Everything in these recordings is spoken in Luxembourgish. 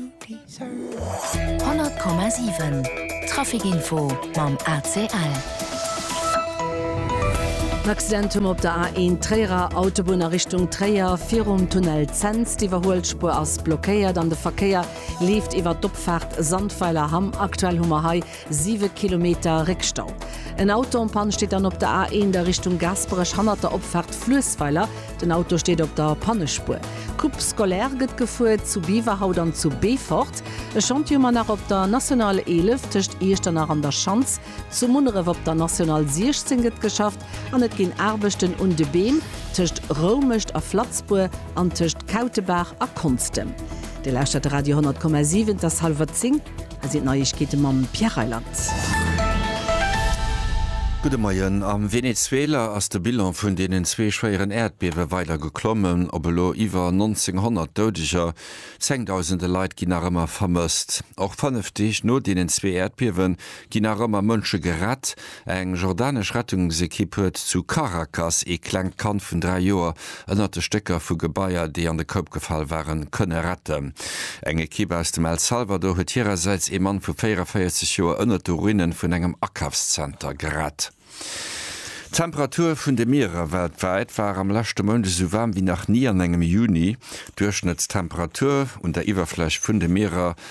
100,7 Traficinfo mam ACL. Accidentum op der A1 Tréierer Autobunn a Richtung Tréier virum Tunnel Zens. D'Iwwerhuelspuer ass blockéiert an de Verkéier leeft iwwer d'Opfaart Sandweiler Hamm. Aktuell hu mer hei Siwe Kilometer Réckstau. En Auto en Panne steet dann op der A1 a Richtung Gaasperech hannert der Opfaart Fluessweiler. Den Auto steet op der Pannespuer. D'Coupe scolaire gëtt gefuer zu Beaverhout an zu Beefort. E Schantje mar nach op der National 11 tëscht Iechternach an der Schanz. Zu Munneref op der National 16 gëtt geschafft an et ginn Aarbechten un de Beem tëscht Roumecht a Flatzbour an tëscht Kautebaach a Konstem. Dir lauschtert Radio 100,7, et ass hallwer zéng. Hei sinn d'Neiegkeete mam Pierre Reyland. Gudde Moien. Am Venezuela ass de Bilan vun deenen zwee schwéieren Äerdbiewe weider geklommen, op elo iwwer 1.900 Doudeger. Zengdausende Leit ginn nach ëmmer vermësst. Och fënnef Deeg no deenen zwee Äerdbiewe ginn nach ëmmer Mënsche gerett. Eng jordanesch Rettungsekipp huet zu Caracas ee klengt Kand vun 3 Joer ënnert de Stécker vu Gebaier, déi an de Koup gefall waren, kënne retten. Eng Ekipp aus dem El Salvador huet hirersäits ee Mann vu 44 Joer ënnert de Ruine vun engem Akafszenter gerett. D'Temperatur vun de Mierer weltwäit war am leschte Mount esou waarm wéi nach ni an engem Juni. D'Duerchschnëttstemperatur un der Iwwerfläch vun de Mierer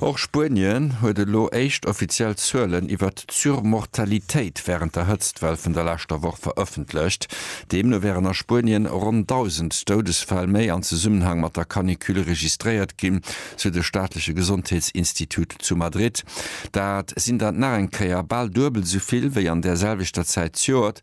Och Spuenien huet elo éischt offiziell Zuelen iwwert d'Surmortalitéit wärend der Hëtztwell vun der leschter Woch verëffentlecht. Deemno wären a Spuenien ronn 1.000 Doudesfäll méi am Zesummenhang mat der Canicule registréiert ginn, sou de staatleche Gesondheetsinstitut zu Madrid. Dat sinn der nach eng Kéier bal duebel esou vill wéi an där selwechter Zäit d'Joert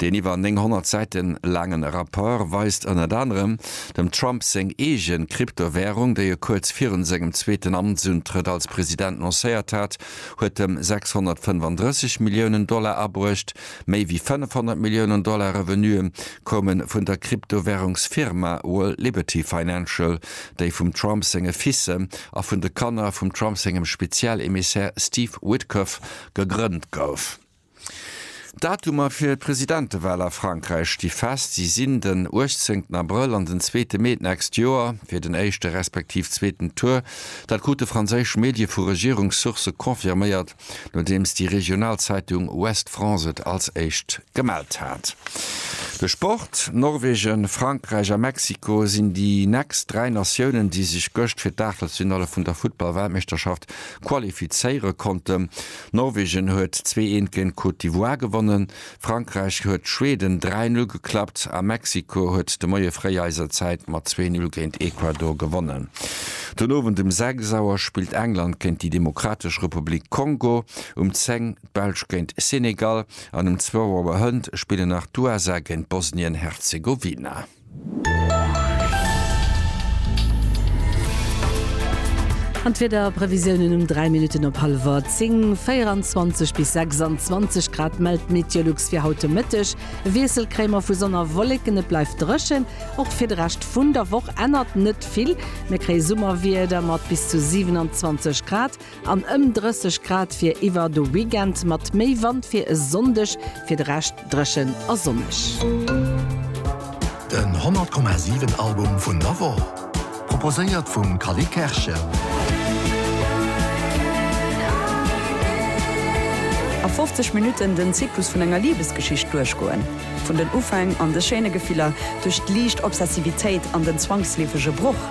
Deen iwwer 900 Säite laangen Rapport weist ënnert anerem, dem Trump seng eegen Kryptowärung, déi e kuerz virun sengem zweeten Amtsuntrëtt als President lancéiert hat, huet em 635 Milliounen Dollar abruecht. Méi wéi 500 Milliounen Dollar Revenuë koume vun der Kryptowärungsfirma World Liberty Financial, déi vum Trump senge Fils a vun de Kanner vum Trump sengem Spezial-Emissär Steve Witkoff gegrënnt gouf. D'Datumer fir d'Presidentewahl a Frankräich sti fest. Si sinn den 18 Abrëll an den zweete Mee d'nächst Joer. Fir den éischte respektiv zweeten Tour, dat krute franséisch Medie vu Regierungssource confirméiert, nodeems déi regional Zeitung Ouest France et als éischt gemellt hat. De Sport, Norwegen, Frankräich a Mexiko sinn déi nächst dräi Natiounen, déi sech gëscht fir d'Aachtelsfinalle vun der Futtball-Weltmeeschterschaft qualifizéiere konnten. Norwegen huet zwee eent géint d'Côte d'Ivoire gewonnen, Frankräich huet Schweden dräi Null geklappt a Mexiko huet de Moie fréi eiser Zäit mat zwee Null géint Ecuador gewonnen. Den Owend um sechs Auer spillt England géint déi Demokratesch Republik Kongo, um zéng d'Belsch géint Senegal an um zwou Auer hënt spillen nach d'USA géint Bosnien-Herzegowina. An d'Wiederprevisiounen um 3 Minutten op hallwer 10, 24 bis 26 Grad mellt d'Meteolux fir haut de Mëtteg. E Wiessel kréie mer vu Sonn a Wolleken, et bleift dréchen. Och fir de Rescht vun der Woch ännert net vill, mir kréie Summerwieder mat bis zu 27 Grad. An ëm 30 Grad fir iwwer de Weekend, mat méi Wand fir e Sonndeg. Fir de Rescht dréchen a sonneg. Den 100,7 Album vun der Woch, proposéiert vum Cally Kerschen. A 50 Minutten den Zyklus vun enger Libesgeschicht duerchgoen. Vun den Ufäng an de schéine Gefiller, duerch d'liicht Obsessivitéit an den zwangsleefege Broch.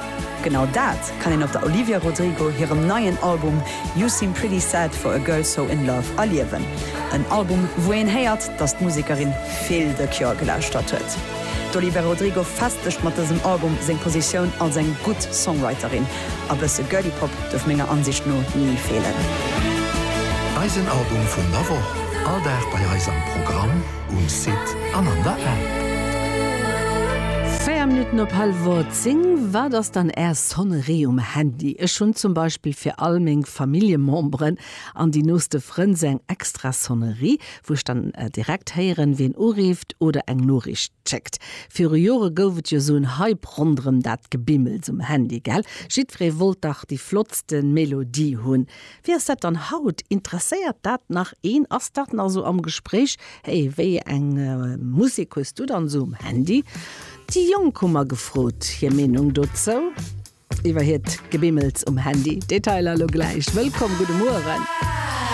Genau dat kann een op der Olivia Rodrigo hirem neien Album You Seem Pretty Sad For A Girl So In Love erliewen. En Album, wou een héiert, dass d'Musekerin vill The Cure gelauschtert huet. D'Olivia Rodrigo festegt mat dësem Album seng Positioun als eng gutt Songwriterin, A bësse Girly Pop duerf menger Ansicht no ni feelen. Eisen Album vun der Woch, all Dag bei eis am Programm, um Site an an der App. 4 Minutten op hallef 8. Sinn, Wat ass dann Är Sonnerie um Handy? Ech hunn zum Beispill fir all meng Familljememberen an déi nooste Frënn sou eng extra Sonnerie, wou ech dann direkt héieren, wien urifft oder eng Noriicht schéckt. Viru Jore gouf et jo sou en Hype ronderëm dat Gebimmels um Handy, gell? Jiddweree wollt dach déi flottste Melodie hunn. Wéi ass dat dann haut? Interesséiert dat nach een? Ass dat nach esou am Gespréich? Hey, wéi eng Musek hues du dann esou um Handy? Déi Jonk hu mer gefrot hir Meenung dozou iwwer hiert Gebimmels um Handy. Detailer elo gläich. Wëllkomm, gudde Mueren.